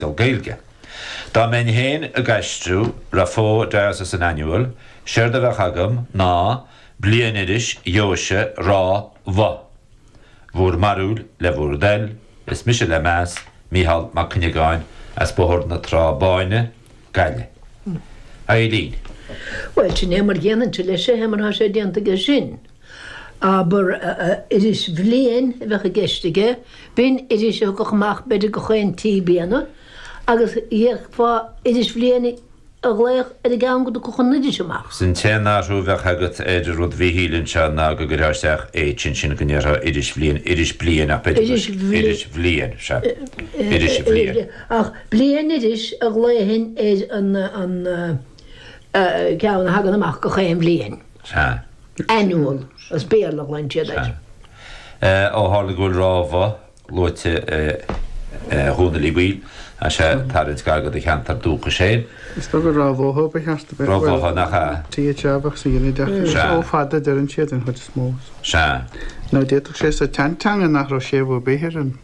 don Ghaeilge. Dá mbeinn féin ag aistriú Raphoe Diocesan Annual, séard a bheadh agam ná Bliainiris Dheoise Ráth Bhoth, bhúr mbarúil le bhúr dtoil, is mise le meas, Mícheál Mac Cuinneagáin as Bóthar na Trá Báine, Gaillimh. Eibhlín. Bhuel, sin é mar a dhéanfainnse leis é mar atá sé déanta aige sin. Abair, iris bhliain a bheadh i gceist aige, bíonn iris ag teacht amach b'fhéidir gach aon trí bliana, agus d'fhéadfá iris bhliain a ghlaoch ar an gceann go dtiocfadh an iris amach. Sé an t-aon athrú a bheadh agat ar rud Mhíchíl anseo ná go gcuirfeá isteach H ansin go ndéarfá iris bhliain, iris bliain ach b'fhéidir go, iris bhliain, sea, iris bhliain. Ach bliainiris a ghlaofainn ar an. ceann a thagann amach gach aon bhliain. Sea. Annual, as Béarla a ghlaonn siad air. Sea. Ó tharla go bhfuil Ráth Bhoth luaite, a Dhónaill Uí Bhaoill, tá sé ag tarraingt gar go do cheantar dúchais féin. Is dócha Ráth Bhotha ba cheart a bheith. Ráth Bhotha, nach ea? Tigh Treabhach sa ghinideach. Is ó fada a deireann siad, den chuid is mó. Sea. Nó d'fhéadfadh sé sa tseanteanga nach raibh séimhiú ar bith ar an.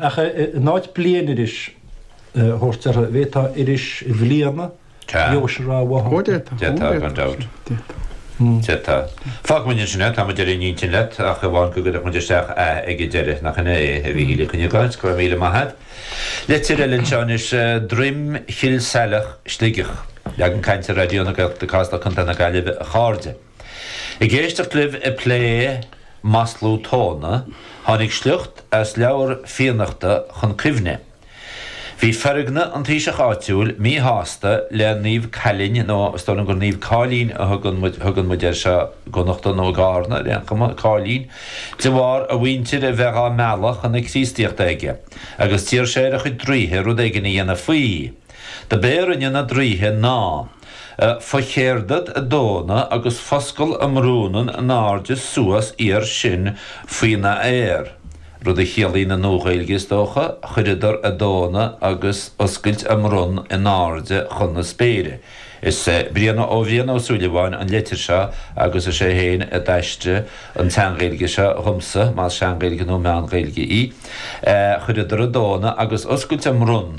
Ach in áit bliainiris a thabhairt orthu, an bhféadfá Iris Bhliana Dheoise Ráth Bhotha. Ó d'fhéadfá. D'fhéadfá, gan dabht. D'fhéadfá. Fágfaidh muid ansin é, tá muid ar aon intinn leat, ach amháin go gcuirfeadh muid isteach a ag an deireadh, nach sin é, a Mhíchíl Mhic Cuinneagáin? Go raibh míle maith agat. Leitir eile anseo anois, Droim Chill Saileach, Sligeach. Leagan cainte Raidió na Gaeltachta, Casla, Co. na Gaillimhe, a chairde. Ag éisteacht libh ag plé maslú tóna, tháinig sliocht as leabhar Fiannachta chun cuimhne. Bhí Feargna an taoiseach áitiúil míshásta le Naomh Caillín, nó is dóigh liom gur Naomh Cáillín a thugann muid, thugann muid air seo i gConnachta nó i gCarna ar aon chuma, Cáillín, de bharr a mhuintir a bheith á mealladh chun na Críostaíochta aige, agus d'iarr sé ar a chuid draoithe rud éigin a dhéanamh faoi. Dob é a rinne na draoithe ná. Focheardad a dtóna agus foscal a mbrúnann a n-airde suas iar sin faoi na aer, rud a chiallaíonn i Nua-Ghaeilge, is dócha, chuireadar a dtóna agus oscailt a mbronn in airde chun na spéire. Is é Brian, ó Bhrian Ó Súilleabháin an leitir seo agus is é féin a d'aistrigh an tSean-Ghaeilge seo dhomsa, más Sean-Ghaeilge nó Meán-Ghaeilge í. Chuireadar a dtóna agus oscailt a mbronn.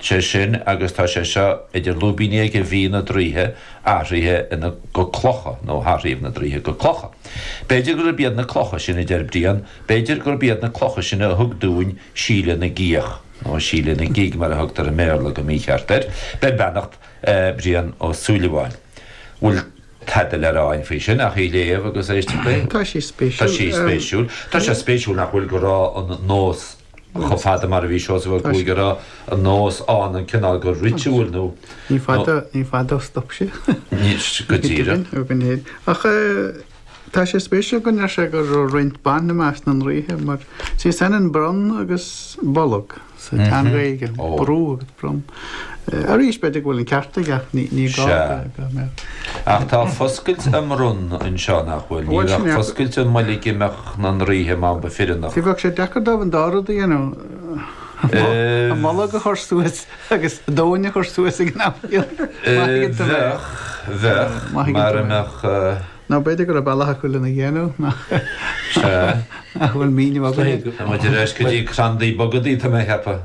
sé sin agus tá sé seo idir lúibíní aige, bhí na draoithe athraithe ina go clocha, nó hathraíodh na draoithe go clocha. B'fhéidir gurb iad na clocha sin, a deir Brian, b'fhéidir gurb iad na clocha sin a thug dúinn Síle na gCíoch, nó Síle na gCig mar a thugtar i mBéarla go mícheart air, beir beannacht Brian Ó Súilleabháin. Bhfuil tada le rá againn faoi sin ach í léamh agus éisteacht léi? Tá sí spéisiúil. Tá sí spéisiúil. Tá sé spéisiúil nach bhfuil go raibh an nós Chomh fada mar a bhí Seosamh Ó Cuaig a raibh an nós ann an cineál go ritual nó. Ní fada, ní fada a stop sé. Go díreach. Ó go léir. Ach tá sé spéisiúil go ndeir sé go raibh roinnt ban i measc na ndraoithe mar, sé is ionann bronn agus bolg sa teanga Ghaeilge, brú agus bronn. Arís, b'fhéidir go bhfuil an ceart aige, ní gá go mbeadh. Ach tá foscailt a mbronn anseo, nach bhfuil? Ní bheadh foscailt a mbolg i measc na ndraoithe dá mba fireannach. Ní bheadh sé deacair dóibh an dá rud a dhéanamh, an bolg a chur suas agus an tóin a chur suas ag an am céanna. Bheadh, bheadh, mara mbeadh. Nó b'fhéidir go raibh bealach acu lena dhéanamh nach bhfuil míniú agam. Muid ar ais go dtí crandaí bogadaí, tá mé a cheapadh.